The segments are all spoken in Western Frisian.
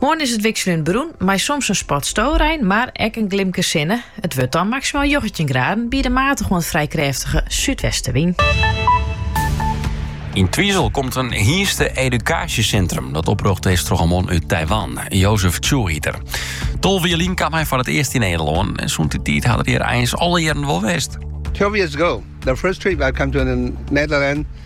Moarn is it wikseljend berûn mei soms in spat storein, mar ek in glimke sinne. It wurdt dan maksimaal njoggentjin graden by in matige oant frij krêftige súdwestenwyn. Yn Twizel komt in hynste-edukaasjesintrum dat oprjochte is troch in man út Taiwan, Joseph Chu hjit er. Tolve jier lyn kaam hy foar it earst yn Nederlân en sûnt dy tiid hat er hjir eins alle jierren wol west. 12 years ago, the first trip I come to Nederland,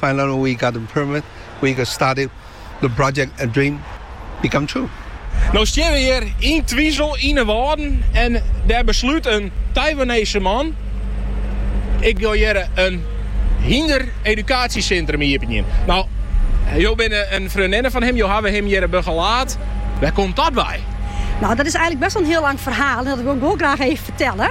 Finally we got the permit, we can start it, the project and dream become true. No stean we hjir yn Twizel yn 'e Wâlden en dêr beslút in Taiwanese man, ik wol hjir in hynder-edukaasjesintrum iepenjen. No, jo binne in freondinne fan him, jo hawwe him hjir begelaat. Wêr komt dat wei? No, dat is eigenlik best wel in hiel lang ferhaal en dat wol ik wol graach even fertelle.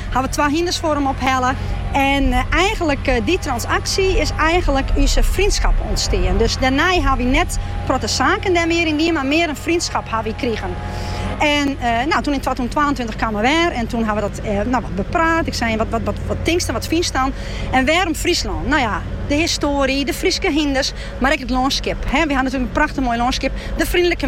Ha we twa hynders foar him ophelle. En eigenlik út dy transaksje is eigenlik ús frjendskap ûntstean. Dus dêrnei ha wy net protte saken dêr mear yn dien, mar mear in frjendskap ha wy krigen. En eh, nou, toen in twatûzentwaentweintich kaam er wer en toen ha we dat eh, nou, wat bepraat. Ik zei, wat, wat, wat, wat tinkste, wat fynst dan? En wêrom Fryslân? Nou ja, de histoarie, de Fryske hynders, mar ek it lânskip. We ha natuurlijk een prachtig mooi lânskip, de vriendelijke